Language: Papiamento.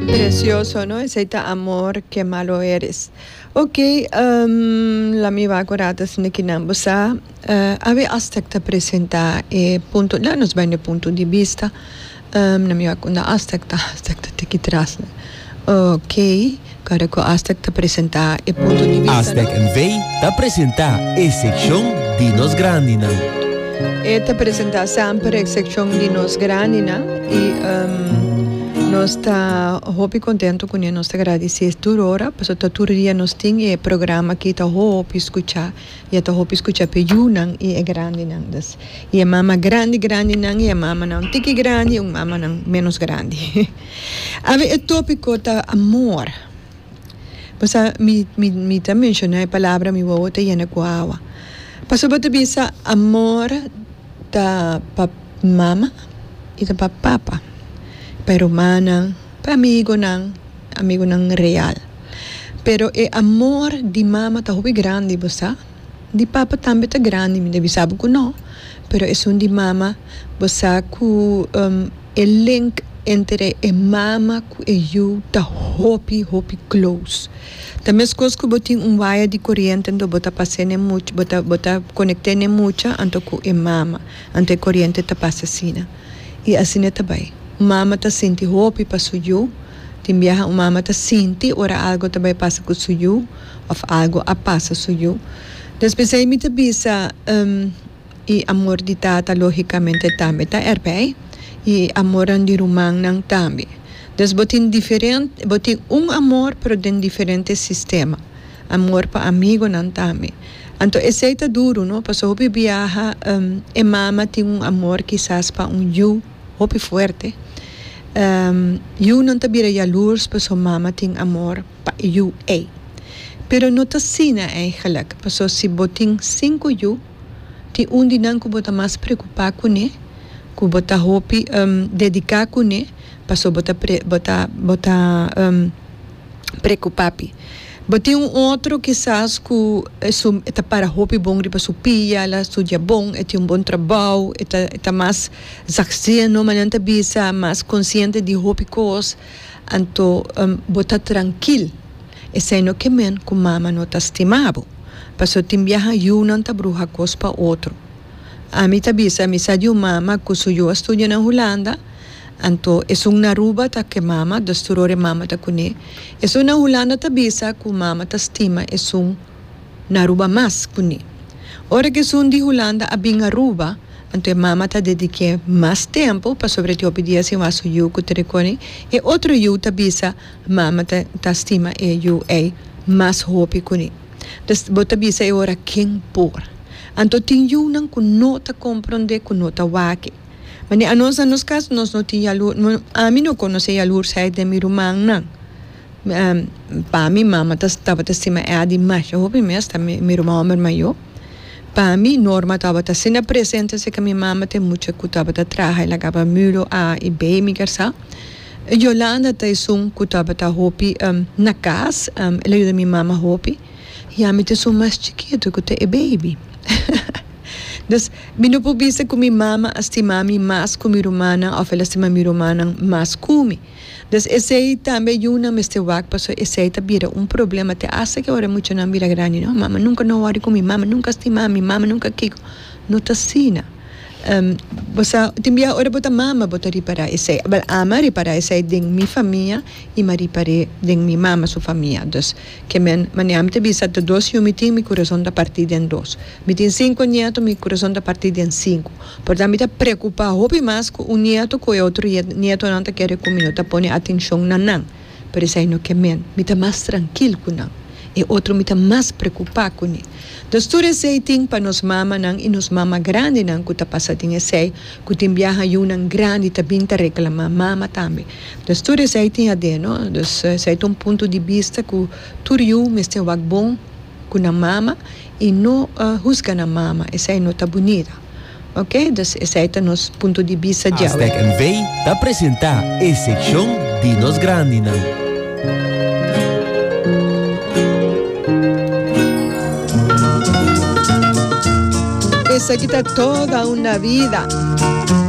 Precioso no esey ta amor que malo eres ok la mi wak ora ta sinti ki nan bo sa awe asta ta presenta e punto nan nos bai na e punto di bista na mi wak unda asta asta ta tiki tras ok. Kada ku Aztec ta presentá e punto di vista nan. Aztec NV. ta presentá e sekshon di nos grandinan. E ta presentá semper e sekshon di nos grandinan i nos ta hopi kontentu kuné. Nos ta gradisé tur ora pasobra ta tur dia nos tin i e programa aki ta hopi skuchá. i a ta hopi skucha p'e yunan i e grandinan. Dus, i e mama grandi grandinan i e mamanan un tiki grandi i un mamanan ménos grandi. Awe e tópiko ta amor. Bo sa mi, mi, mi ta menshoná e palabra mi wowo ta yena ku awa. Pasobra bo ta bisa amor ta pa mama i ta pa papa, pa e rumannan, pa e amigonan, amigunan real. Pero e amor di mama ta hopi grandi bo sa, di papa tambe ta grandi mi ta bisa bo ku no, pero esun di mama bo sa ku e link entre e mama ku e yu ta hopi hopi close, ta meskos ku bo tin un waya di koriente anto bo ta pase ne mucha bo ta konekte ne mucha anto ku e mama anto e koriente ta pasa asina. I asina ta bai. Un mama ta sinti hopi pa su yu. Tin biaha un mama ta sinti ora algu ta bai pasa ku su yu òf algu a pasa su yu. Nos p'esei mi ta bisa, um, i amor di tata lógikamente tambe ta er p'ei, i e amornan di rumannan tambe. Dus bo tin diferente, bo tin un amor pero den diferente sistema. Amor pa amigonan tambe. Anto esei ta duru, no? Paso hopi biaha e mama tin un amor kisas pa un yu hopi fuerte. Yunan ta bira yalurs paso mama tin amor pa e yu ei. Pero no ta asina eigenlijk, paso si bo tin sinku yu, tin un di nan ku bo ta mas preocupa kuné, ku bo ta hopi dedica kuné, paso bo ta bo ta bo ta. preocupapi. Bo tin un otro kisas cu e su e ta para hopi bon riba su pia, el a studia bon, e tin un bon trabao, e ta e ta mas zachtzieno mane nan ta bisa, mas consciente di hopi cos, anto bo ta trankil esei no ke men cu mama no ta stima bo. Pasobra tin biaha yunan ta bruha cos pa otro. Ami ta bisa, mi sa di un mama cu su yu a studia na Hulanda, Anto esun na Aruba ta ke mama, dus tur ora e mama ta kuné. Esun na Hulanda ta bisa ku mama ta stima esun na Aruba mas kuné. Ora ku esun di Hulanda a bin Aruba, anto e mama ta dedik'é mas tempu pasobra e hopi dia sin wak su yu ku ta rikoni e otro yu ta bisa mama ta ta stima e yu ei mas hopi kuné. Dus bo ta bisa e ora ken por. Anto tin yunan ku no ta komprondé ku no ta wak e. Mane anos na nos cas nos no tin yalur, ami no conoce yalursaid den mi rumannan. Pa mi mama ta tabata stima Eddy masha hopi mes ta mi ruman homber mayo. Pa mi Norma tabata asina presente así cu mi mama ta e mucha cu tabata traha y lagaba mulo a y B mi kersá. Yolanda ta esun cu tabata hopi na cas el a yuda mi mama hopi y ami ta esun mas chikito cu ta e baby. Mi no por bisa cu mi mama a stima mi mas cu mi rumannan of el a stima mi rumannan mas cu mi. Des esey tambe yunan mester wak pasobra esey ta bira un problema te hasta ki ora e muchanan bira grandi. No, mama nunca no a wòrdi cu mi, mama nunca a stima mi, mama nunca kico. No ta asina. Bo sa, tin biaha ora bo ta mama bo ta ripara esey. Bal, ami a ripara esey den mi famia i mi a ripar'e den mi mama su famia. Ke men mania mi ta bisa ta dos yu mi tin mi kurason ta parti den dos. Mi tin sinku nieto mi kurason ta parti den sinku. Porta mi ta preokupa hopi mas ku un nieto ku e otro nietonan ta kere ku mi no ta pone atenshon na nan. Pero esei no ke men. Mi ta mas trankil ku nan. E otro mi ta mas preokupa kuné. Dus tur esei tin pa nos mamanan i nos mama grandinan ku ta pasa den esei ku tin biaha yunan grandi ta bin ta reklama mama tambe. Dus tur esei tin ADN, no? Dus esei ta un punto di bista ku tur yu mester wak bon ku nan mama i no husga nan mama, esei no ta bunita. Ok, dus esei ta nos punto di bista djawe. Aztec NV ta presentá e sekshon di nos grandinan. Esaki ta toda una vida.